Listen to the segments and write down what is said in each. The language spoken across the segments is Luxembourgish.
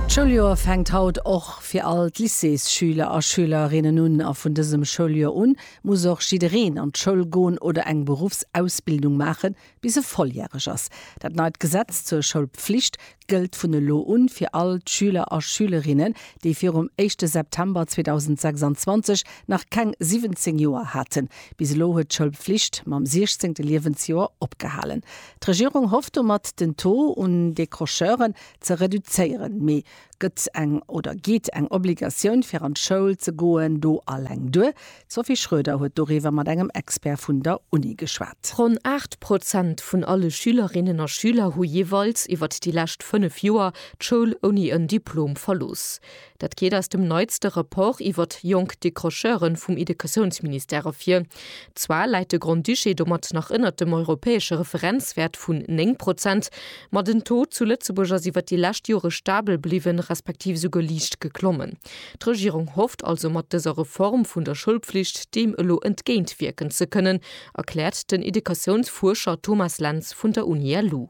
D'Schouljoer fänkt haut och fir all d'Lycéesschüler a schülerinnen un a vun dësem Schouljoer un muss och jiddereen an d'Schoul goen oder eng Beruffsausbildung maachen, bis e volljäreg ass. Dat neit Gesetz zur Schoulpflicht gëllt vun elo un fir all d'Schüler a Schülerinnen, déi virum éischte September 2026 nach keng 17 Joer haten. Bis elo huet d'Schoulpflicht mam 16. Liewensjoer opgehalen. D'Regierung hofft domat den Taux un Décrocheuren ze reduzéieren. Mee gëtt eng oder geet eng Obligatioun fir an d'Schoul ze goen do alleng duer? D'Sophie Schroeder huet doriwwer mat engem Expert vun der Uni geschwat. Ronn 8 Prozent vun alle Schülerinnen a Schüler hu jeeweils iwwert déi lescht 5 Joer d'Schoul ouni en Diplom verlooss. Dat geet aus dem neitste Rapport iwwert jonk Décrocheuren vum Idekesounsministère ervir. Zwar läit de Grand-Duché domat nach ënnert dem europäesche Referenzwäert vun 9 Prozent, ma den Taux zu Lëtzebuerg ass iwwert déi lescht Jore stabel bliwwen, respektiv esouguer liicht geklommen. D'Regierung hofft also mat dëser Reform vun der Schoulpflicht deem elo entgéintwierken ze kënnen, erkläert den Idekesounsfuerscher Thomas Lentz vun der Uni LU.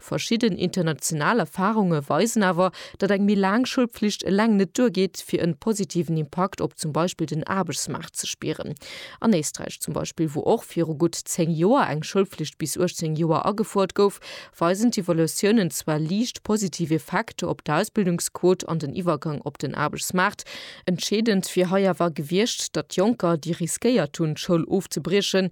Verschidden international Erfahrunge weisen awer, datt eng méi laang Schoulpflicht eleng net duergeet, fir en positiven Impakt op zum Beispill den Aarbechtsmaart ze spieren. An Éisträich zum Beispill, wou och viru gutt 10 Joer eng Schoulpflicht bis 18 Joer agefuert gouf, weisen d'Evaluatiounen zwar liicht positiv Effekter op d'Ausbildungsquot an den Iwwergang op den Aarbechtsmaart. Entscheedend wier hei awer gewiescht, datt Jonker, déi riskéiert hunn, d'Schoul ofzebriechen,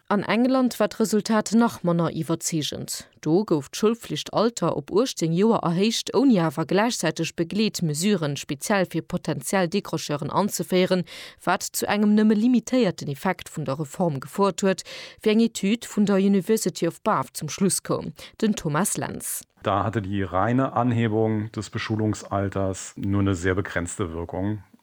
An England war d'Resultat nach manner iwwerzeegend. Do gouf d'Schoulflichtalter op 18 Joer erhéicht, ouni awer gläichzäiteg Begleetmesuren speziell fir potentiell Décrocheuren anzeféieren, wat zu engem nëmme limitéierten Effekt vun der Reform gefouert huet, wéi eng Etüd vun der University of Bath zum Schluss koum. Den Thomas Lentz. Da hatte die reine Anhebung des Beschulungsalters nur eine sehr begrenzte Wirkung.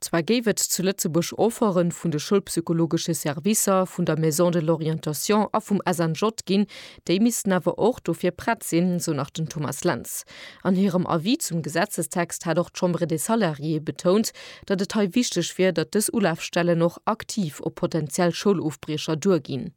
Zwar géif et zu Lëtzebuerg Offerten vun de schoulpsychologesche Servicer, vun der Maison de l'orientation a vum SNJ ginn, déi missten awer och dofir prett sinn, sou nach den Thomas Lentz. An hirem Avis zum Gesetzestext hat och d'Chambre des salariés betount, datt et hei wichteg wier, datt dës Ulafstellen och aktiv op potentiell Schoulofbriecher duerginn.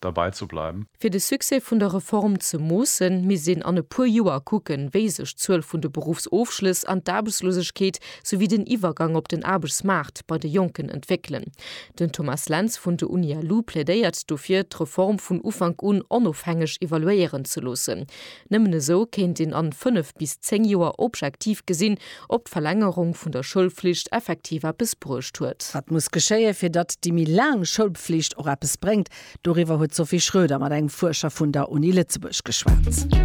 derbei ze bleiwen. Fir de Succès vun der Reform ze moossen, misst een an e puer Joer kucken, wéi sech d'Zuel vun de Beruffsofschlëss an d'Aarbechtslosegkeet souwéi den Iwwergang op den Aarbechtsmaart bei de Jonken entwéckelen. Den Thomas Lentz vun de Unialu plädéiert dofir, d'Reform vun Ufank un onofhängeg evaluéieren ze loossen. Nëmmen esou kéint een an 5 bis 10 Joer objektiv gesinn, ob d'Verlängerung vun der Schoulflicht effektiv eppes bruecht huet. Wat muss geschéien, fir datt déi méi laang Schoulpflicht och eppes bréngt? Doriwwer huet d'Sophie Schroeder mat engem Fuerscher vun der Uni Lëtzebuerg geschwat.